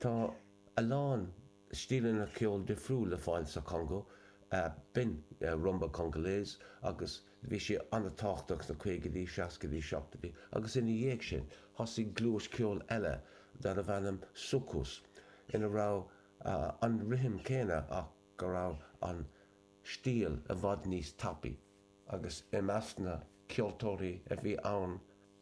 Tá a lán stíleanna ceoil difriúil le fáil sa Chongó. B'in rumba congolaise agus bhí sé an-tábhachtach sna caogaidí, seascaidí, seachtaidí agus ina dhiaidh sin thosaigh gluais ceoil eile darbh ainm soukous ina raibh an rithim céanna ach go raibh an stíl i bhfad níos tapaí. Agus i measc na ceoltóirí a bhí ann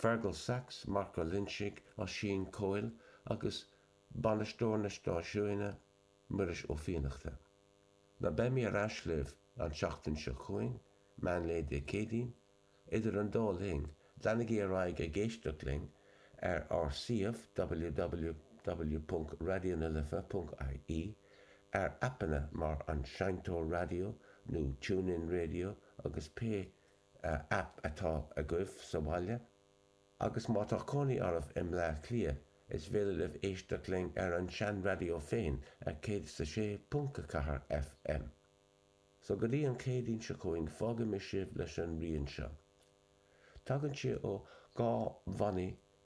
Fergal Sachs, Mark Ó Loinsigh, Oisín Coyle agus bainisteoir an stáisiúin, Muiris Ó Fiannachta. Beimid ar ais libh an tseachtain seo chugainn, meán lae Dé Céadaoin. Idir an dá linn, leanaigí ar aghaidh ag éisteacht linn ar ár suíomh www.radionalife.ie, ar aipeanna mar An Seinnteoir Raidió nó TuneIn Radio agus pé aip atá agaibh sa bhaile agus má tá cónaí oraibh i mBleá Cliath is féidir libh éisteacht linn ar an seanraidió féin ar 106.4 FM. So go dtí an Chéadaoin seo chugainn fágaimis sibh leis an rian seo. Tagann sé ó dhá bhanna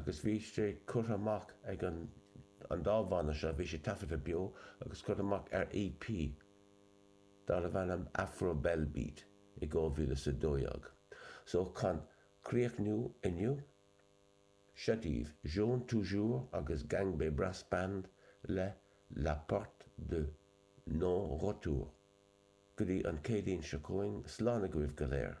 agus bhí sé curtha amach ag an an dá bhanna seo, bhí sé taifeadta beo agus curtha amach ar EP darbh ainm Afro Belle Beat i 2012. So chun críochnú inniu, seo daoibh Jeune Toujours agus Gangbé Brass Band le La Porte de Non Retour. Go dtí an Chéadaoin seo chugainn, slán agaibh go léir!